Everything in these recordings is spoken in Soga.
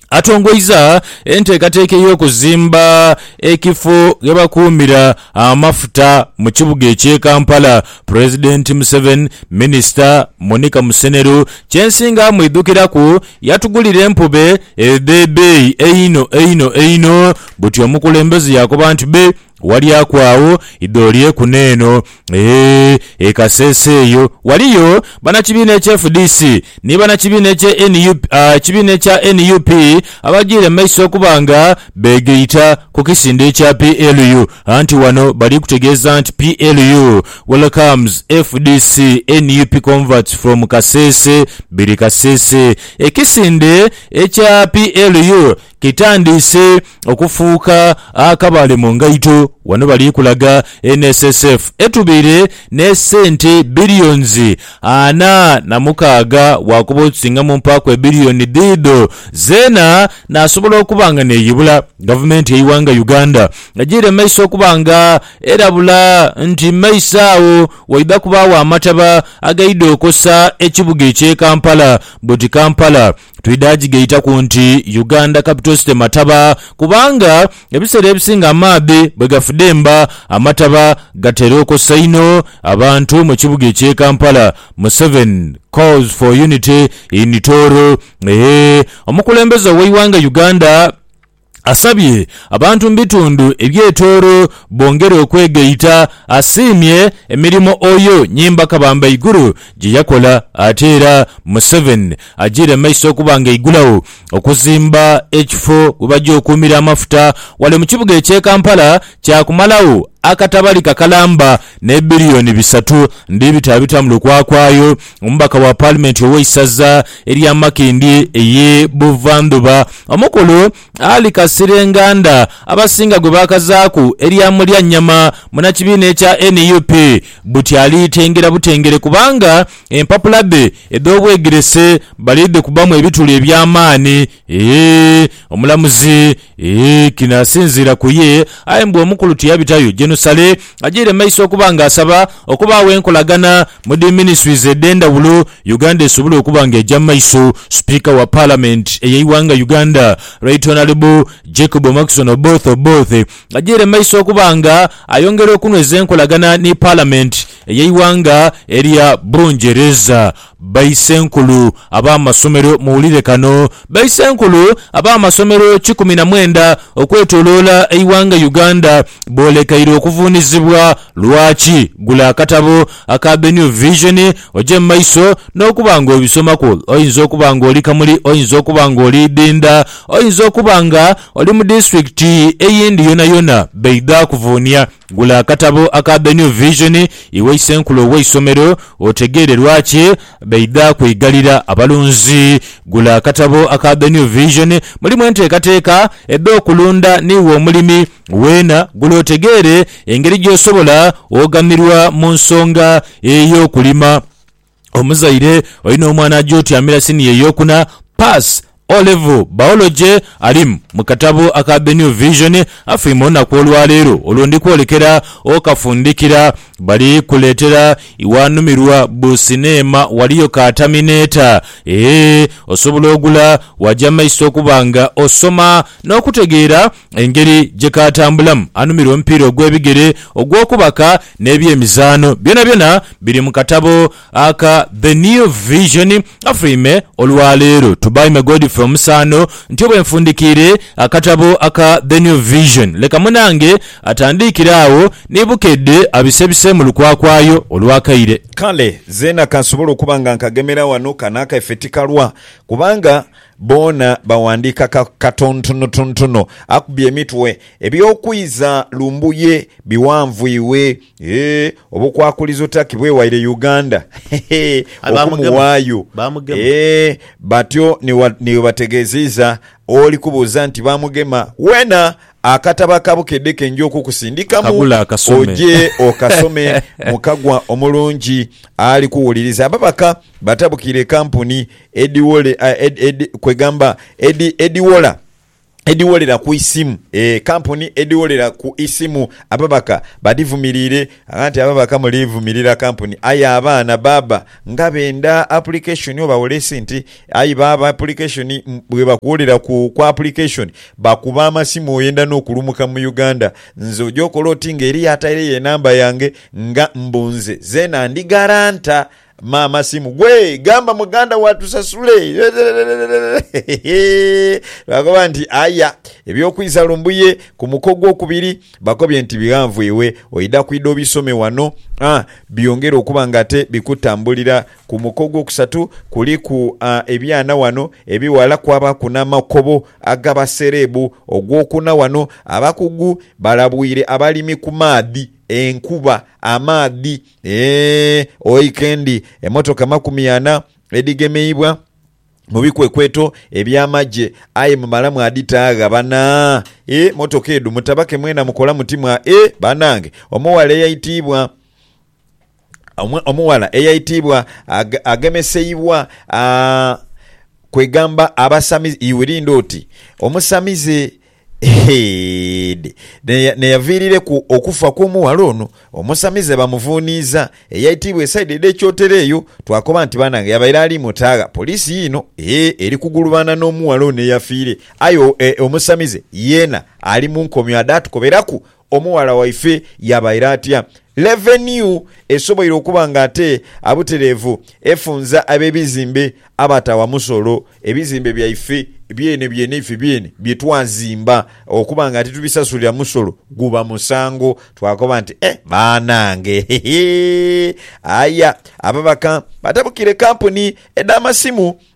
atongoiza enteekateeka ey'okuzimba ekifo ghe bakuumira amafuta mu kibuga eky'e Kampala, Pulezidenti Museveni, Minisita Monica Musenero kyensinga amwidhukiraku yatugulira empube edh'ebeeyi einho einho einho buti omukulembeze yakoba nti be Walyaaku agho idho lye ku n'eno eeh e Kasese eyo. Waliyo banakibiina ekye fdc ni banakibiina ekye nup kibiina ekya nup abagiire mu maiso okuba nga beegaita ku kisinde ekya PLU anti wano bali kutegeeza nti PLU welcomes fdc nup converts from Kasese biri Kasese. Ekisinde ekya PLU Kitandiise okufuuka akabale mu ngaito. Wano bali kulaga NSSF etubaire ne sente billions ana na mukaaga bwakuba otusinga mu mpaaku ebillion dhiidho zeena nasobola okuba nga neyibula gavumenti yeiwanga Uganda ejiire maiso okuba nga erabula nti maiso agho waidha kubaagho amataba agaidha okosa ekibuga ekye Kampala but Kampala Twidha gigaitaku nti Uganda Capital City Mataba kubanga ebiseera ebisinga amaadhi bwe gafudemba amataba gatera okosa inho abantu mu kibuga eky'e Kampala Museveni Calls for Unity in Tooro Eehh Omukulembeze ow'eighanga Uganda Asabye abantu mu bitundu ebyetoolo bongere okwegaita. Asiimye emirimo Oyo Nyimba Kabamba Iguru gye yakola ate era Museveni ajiire mu maiso okuba nga eigulawo okuzimba ekifo we baja okuumira amafuta wale mu kibuga ekye Kampala kya kumalawo akatabalika kalamba ne biliyoni bisatu ndi bitaabitamu lukwakwayo Omubaka wa paalimenti ow'eisaza erya Makindye eye Buvandhuba, omukulu Ali Kasirye Nganda abasinga gwe baakazaaku erya Mulyannyama munnakibiina ekya nup buti ali tengera butengere kubanga empapula dhe edh'obwegerese bali dhikubamu ebituli eby'amaani Eeh omulamuzi, Eeh kino asinziira ku ye, aye mbu omukulu tiyabitayo jenusale ajaire maiso okuba nga asaba okubaagho enkolagana mu dhi ministries edhendhawulo Uganda esobole okuba nga eja mu maiso. Sipiika wa parliament eyeighanga Uganda Right Honourable Jacob Omoxon Oboth Oboth ajaire maiso okuba nga ayongera okunweza enkolagana ni parliament eyeighanga erya Bungereza. Baisenkulu ab'amasomero muwulire kano. Baisenkulu ab'amasomero kikumi na mwenda okwetoloola eighanga Uganda boolekeire okuvuunizibwa. Lwaki? Gula akatabo aka The New Vision oje mu maiso n'okuba ng'obisomaku. Oyinza okuba ng'oli Kamuli, oyinza okuba ng'oli Idinda, oyinza okuba nga oli mu disitulikiti eyindi yonayona. Baidha kuvuunia. Gula akatabo aka The New Vision, Iwe Isenkulu ow'Eisomero, otegeere lwaki baidha kweigalira abalunzi. Gula akatabo aka The New Vision, Mulimu Enteekateeka edh'Okulunda n'Iwe Omulimi, weena gula otegeere engeri gy'osobola oghamirwa mu nsonga ey'okulima. Omuzaire, Olina omwana aja otyamira siniya ey'okuna, Pass, O Levo, Biology, Alim mu katabo aka The New Vision, Afeime olunaku olwaleero olwo ndi kwolekera okafundikira. Bali kuleetera iwanumirwa bu sineema waliyo ka Terminator. Eeh, osobola ogula waja mu maiso okuba nga osoma n'okutegeera engeri gye kaatambulamu. Anumirwa omupiira ogw'ebigere, ogw'okubaka n'eby'emizaano byonabyona biri mu katabo aka The New Vision Frame olwa leero to by me Godfrey Omusaano ntyo bwenfundikiire akatabo aka The New Vision leka munange atandiikire agho ni Bukedde abisebiseemu lukwakwayo olw'akaire. Kale zeena kansobole okuba nga nkagemera ghano, kano akaife tikalwa kubanga boona bawandiika ka katontonotontono akubye emitwe Eby'okwiza Lumbuye bighanvwibwe, eeh, obukwakulizo Turkey bwewaire Uganda, hehe, Aye bamugema, okumuwaayo, bamugema. eeh, batyo ni wa- ni webategeezeiza oli kubuuza nti bamugema. Weena akatabo ka Bukedde ke nja okukusindikamu Akagule akasome. oje okasome mu kagwa omulungi ali kuwuliriza. Ababaka batabukire kampuni edhiwole, ah, ed, ed, kwegamba edi, edhiwola. edhigholera ku isimu. E kampuni edhigholera ku isimu ababaka badhivumiriire agha nti ababaka muli vumirira kampuni aye abaana baba nga benda apulikeshoni oba wolesinti aye baaba apulikeshoni bwe bakugholera ku kwa apulikeshoni bakuba amasimu oyenda n'okulumuka mu Uganda nze oja okola oti nga eriyo ataireyo enamba yange nga mbu nze zeena ndi garanta Maama simu gwe gamba muganda wo atusasule lwakuba nti aya eby'okwisa Lumbuye ku muko ogwokubiri bakobye nti bighanvu iwe oidha kwidha obisome wano aa byongere okuba nga ate bikutambulira ku muko ogwokusatu kuliku aa ebyana wano ebighala kwabaaku n'amakobo aga basereebu ogwokuna wano abakugu balabwire abalimi ku maadhi, enkuba, amaadhi. Eeh oike ndi emotoka makumi ana edhigemeibwa mubikwekweto ebyamagye aye mumala mwadhitaagha bana eeh motoka edho mutabake mwena mukola muti mwa eeh banange omughala eyaitiibwa omughala eyaitiibwa agemeseibwa aah kwegamba abasamize iwe linda oti omusamize Heed. N'eyaviirireku okufa kw'omughala ono omusamize bamuvuuniiza eyaitiibwa esaidi edh'ekyotero eyo twakoba nti banange yabaire ali mu taagha. Poliisi yiino eri kugulubaana n'omughala ono eyafiire aye omusamize yeena ali mu nkomyo adatukoberaku Omughala waife yaabaire atya? Levenue esoboire okuba nga ate abutereevu efunza ab'ebizimbe abatawa musolo. Ebizimbe byaife byene byene ife byene bye twazimba okuba nga titubisasulira musolo guba musango. Twakoba nti, Eh, banange! Hehe! Aye ababaka batabukire kampuni edh'amasimu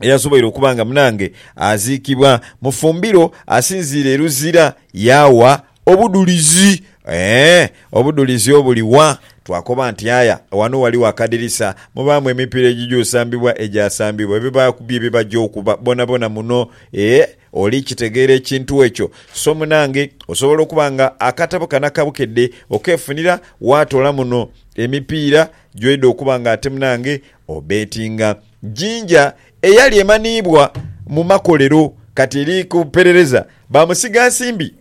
eyasoboire okuba nga munange aziikibwa mu fumbiro asinziire e Luzira yaawa obudhulizi. Ee, obudhulizi obuli wa? Twakoba nti, Aya, ghano ghaligho akadirisa, mubaamu emipiira egigya osambibwa egyasambibwa, ebibaaku bye bibagya okuba boonaboona muno. Ee, oli kitegeera ekintu ekyo? So munange, osobola okuba nga akatabo kano aka Bukedde okeefunira waatoola muno emipiira gy'oidha okuba nga ate munange obeetinga. Jinja eyali emanhiibwa mu makolero kati eri ku perereza bamusiga nsimbi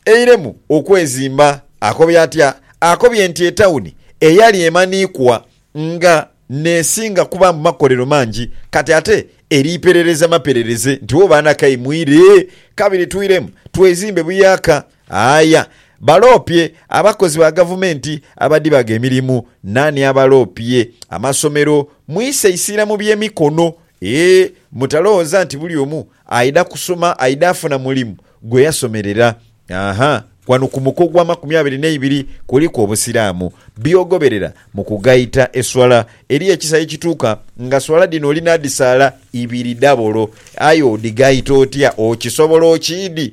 eiremu okwezimba. Akobye atya? Akobye nti etauni eyali emanhiikwa nga nesinga kuba mu makolero mangi kati ate eri perereza maperereze nti wo baana kaimwire kabiri twiremu twezimbe buyaaka. Aaya, baloopye abakozi ba gavumenti abadhibaga emirimu. Naani abaloopye? Amasomero. Mwise isiira mu by'emikono. Ee, mutalowooza nti buli omu aidha kusoma aidha afuna mulimu gwe yasomerera. Aha, ghano ku muko ogw'amakumi abiri n'eibiri kuliku Obusiraamu. By'ogoberera mu kugaita eswala. Eriyo ekisa ye kituuka nga swala dhino oli naadhisaala ibiri dhabolo. Aye odhigaita otya? Okisobola okiidhi?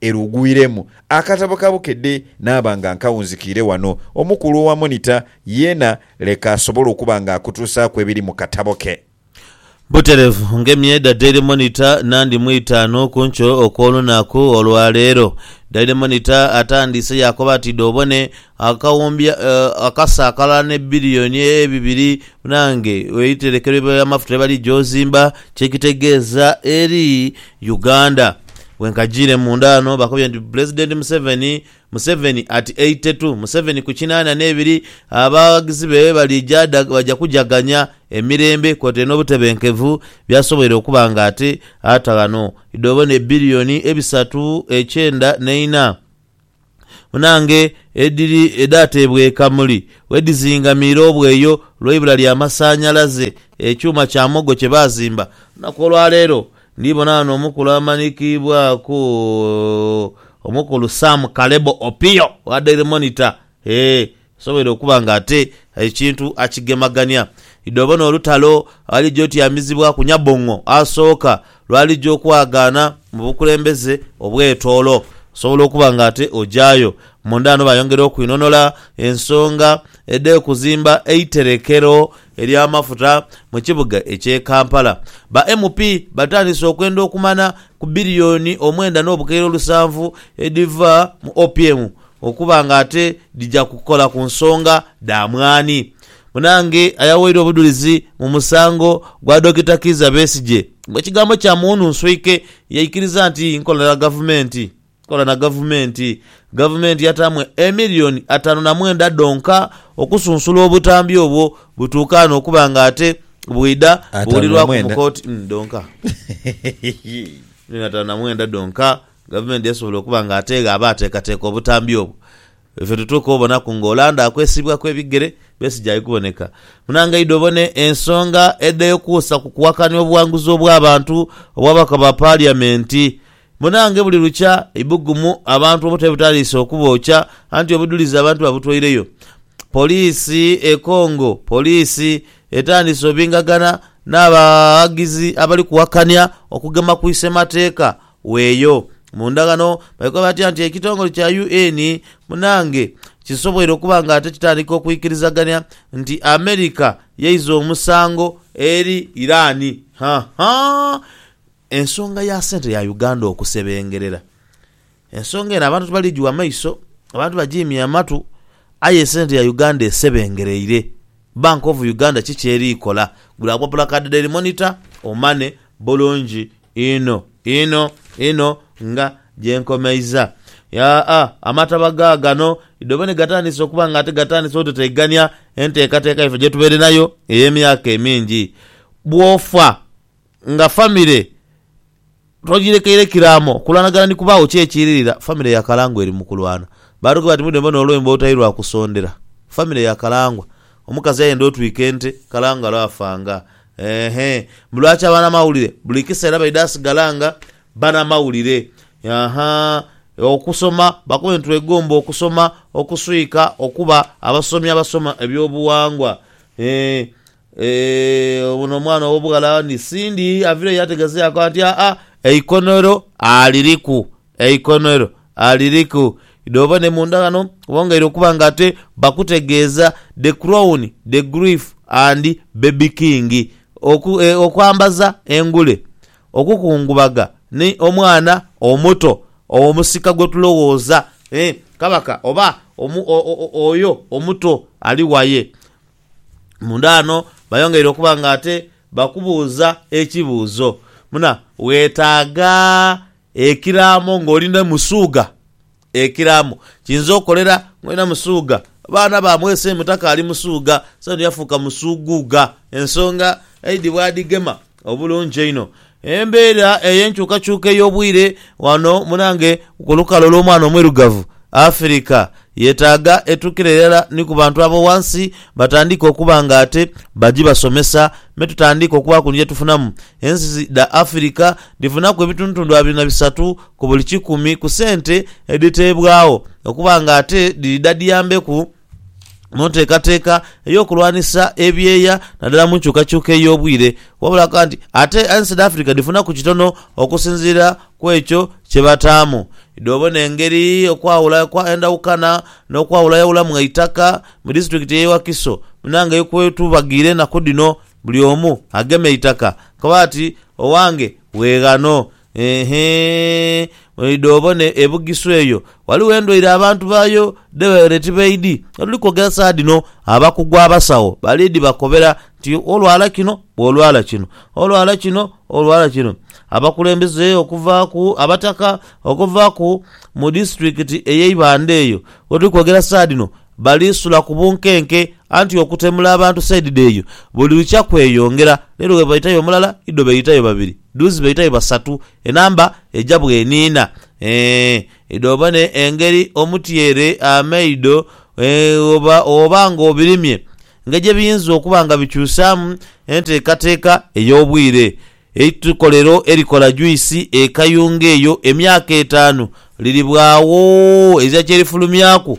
Ere ogwiremu akatabo ka Bukedde naaba nga nkawunzikiire wano. Omukulu owa Monitor yeena leka asobole okuba nga akutuusaaku ebiri mu katabo ke. Buterevu ng'emyedha Daily Monitor nandi mu itaanu ku nkyo okw'olunaku olwaleero. Daily Monitor atandiise yaakoba ati, Dhoobone, akawumbi akasa akalala ne biliyoni ebibiri bunange weiterekero ly'amafuta lyebaliidja ozimba kyekitegeeza eri Uganda. Bwenkajiire munda ghano bakobye nti Pulezidenti Museveni, Museveni at eighty two, Museveni ku kinaana n'ebiri, abaghagizi be baliija baja kujaganya emirembe kwotaire n'obutebenkevu byasoboire okuba nga ate ata ghano idhobona ebiliyoni ebisatu ekyenda n'eina. Munaange edhiri edhaateebweka muli bwedhizingamiire obweyo lw'eibula lya masanhalaze, ekyuma kya muwogo kye baazimba. Ku lunaku olwaleero ndhi bona ghano omukulu amanhikiibwaku Omukulu Sam Kalebo Opio owa Daily Monitor, Ee, asobola okuba ng'ate ekintu akigemagania. Idho bona olutalo alijja otyamizibwaku Nyabong'o asooka lw'alijja okwagaana mu bukulembeze obw'etoolo. Osobola okuba ng'ate ojayo munda ghano bayongera okwinhonhola ensonga edh'okuzimba eiterekero ery'amafuta mu kibuga eky'e Kampala. Ba MP batandise okwenda okumana ku billioni omwenda n'obukaire olusanvu edhiva mu OPM okuba nga ate dhija kukola ku nsonga dha mwaani. Munnange ayaweirwa obudhulizi mu musango gwa Dokita Kiiza Besigye mu kigambo kya muwununswike yaikiriza nti nkola ya gavumenti. Tukola na gavumenti. Gavumenti yataamu emiliyoni ataanu na mwenda dhonka okusunsula obutambi obwo butuukaane okuba nga ate bwidha Ataanu na buwulirwaku mu mwenda. kooti mm, dhonka. Miliyoni ataanu na mwenda dhonka gavumenti yasobola okuba nga ate gh'aba ateekateeka obutambi obwo. Ife tutuuke obonaku ng'olanda akwesiibwaku ebigere, Besigye ali kuboneka. Munange idha obone ensonga edh'ekuusa ku kuwakanya obuwanguzi obw'abantu obw'ababaka ba Paliamenti. Munaange buli lukya eibugumu abantu obuta ebutaliisa okubookya anti obudhulizi abantu babutweireyo Poliisi e Congo Poliisi etandiise obingagana n'abaghagizi abali kuwakania okugema ku isemateeka weeyo Munda ghano baikoba batya nti ekitongole kya UN munaange kisoboire okuba nga ate kitandika okwikirizagania nti America yaiza omusango eri Iran Haahaa Ensonga ya sente ya Uganda okusebengerera, ensonga eno abantu tibali gigha maiso, abantu bagiimye amatu aye sente ya Uganda esebengereire. Bank of Uganda ki ky'eri kola? Gula agwa pulakadi Daily Monitor omane bulungi inho inho inho nga gye nkomeiza. Yaa-a, amataba gaagano idhobe ni gatandise okuba nga ate gatandise oteteigania enteekateeka yaife gye tubaire nayo ey'emyaka emingi. Bw'ofa Nga famire togirekeire kiraamo, kulwanagana ni kubaagho. Ki ekiiririra? Famire yakalangwa eri mu kulwana. Baatughe bati, Mwidhembe ono olwembo olutali lwa kusondera. Famire yakalangwa. Omukazi yayenda otwika ente, kalangalo afa nga. Eehee. Mbu lwaki abanamawulire buli kiseera baidha sigala nga banamawulire? Ahaa. Okusoma, bakobe nti twegomba okusoma, okuswika, okuba abasomi abasoma eby'obuwangwa. Eeh. Eeh, ono omwana ow'obughala ni Cindy aviireyo yategezeeku ati, Aa, eikonero aliriku, eikonero aliriku. Idhooba ni munda ghano bongeire okuba nga ate bakutegeeza The Crown, The Grief and Baby King. Oku, e, okwambaza engule, okukungubaga ni omwana omuto ow'omusika gwe tulowooza, eeh, kabaka oba omu, o, o, oyo omuto ali waye. Munda ghano bayongeire okuba nga ate bakubuuza ekibuuzo muna weetaaga ekiraamo ng'oli ni Musuuga. Ekiraamo kiyinza okukolera ng'olina Musuuga baana ba mwese mutaka ali Musuuga, so yafuuka Musuuguuga ensonga aidhi bwadhigema. Obulungi einho. Embeera ey'enkyukakyuka ey'obwire ghano mu nange ku lukalu olw'omwana omwirugavu, Afirika, yetaaga etuukire irala ni ku bantu abo ghansi batandiike okuba nga ate bagi basomesa me tutandiike okubaaku ni gyetufunamu. Ensi dha Afirika dhifunaku ebitundutundu abiri na bisatu ku buli kikumi ku sente edhiteebwagho okuba nga ate dhiri dha dhiyambeku mu nteekateeka ey'okulwanisa ebyeya naddala mu nkyukakyuka ey'obwire wabula akakoba nti ate ensi dh'Africa dhifunaku kitono okusinziira ku ekyo kye bataamu. Idhi obone engeri okwawula kwa endawukana n'okwawulayawulamu eitaka mu disitulikiti y'e Wakiso munange eyo kwetubagire enaku dhino buli omu agema eitaka koba ati owange weeghano Heehee, oidha obone e Bugisu eyo ghaligho endwaire abantu baayo dhe baire tibaidhi. Ghedhuli kwogera saagha dhino abakugu abasawo bali dhibakobera nti olwala kino bw'olwala kino, olwala kino olwala kino. Abakulembeze okuva ku Abataka okuva ku mu disitulikiti ey'e Ibanda eyo ghedhuli kwogera saagha dhino bali sula ku bunkenke anti okutemula abantu sayidi dh'eyo buli lukya kweyongera. Leero bwebaitayo omulala idho beetayo babiri. Duzi baita be basatu, enamba eja bweniina. Eeh idho bane engeri omutyere, amaido, eeh oba nga obirimye engeri gye biyinza okuba nga bikyusaamu enteekateeka ey'obwire. Eitukolero erikola juisi e Kayunga eyo emyaka etaanu liribwagho ezira kye lifulumyaku.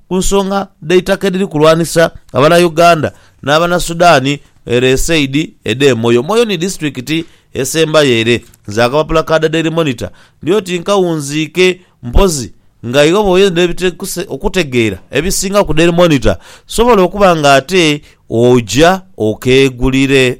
ku nsonga dh'eitaka edhiri kulwanisa abana Uganda n'abana Sudan ere e saidi edh'e Moyo. Moyo ni disitulikiti esembayo ere. Nze akapapula ka The Daily Monitor ndi oti nkawunziike mpozi nga iwe bw'oyenda okutegeera ebisinga ku Daily Monitor sobola okuba ng'ate oja okeegulire.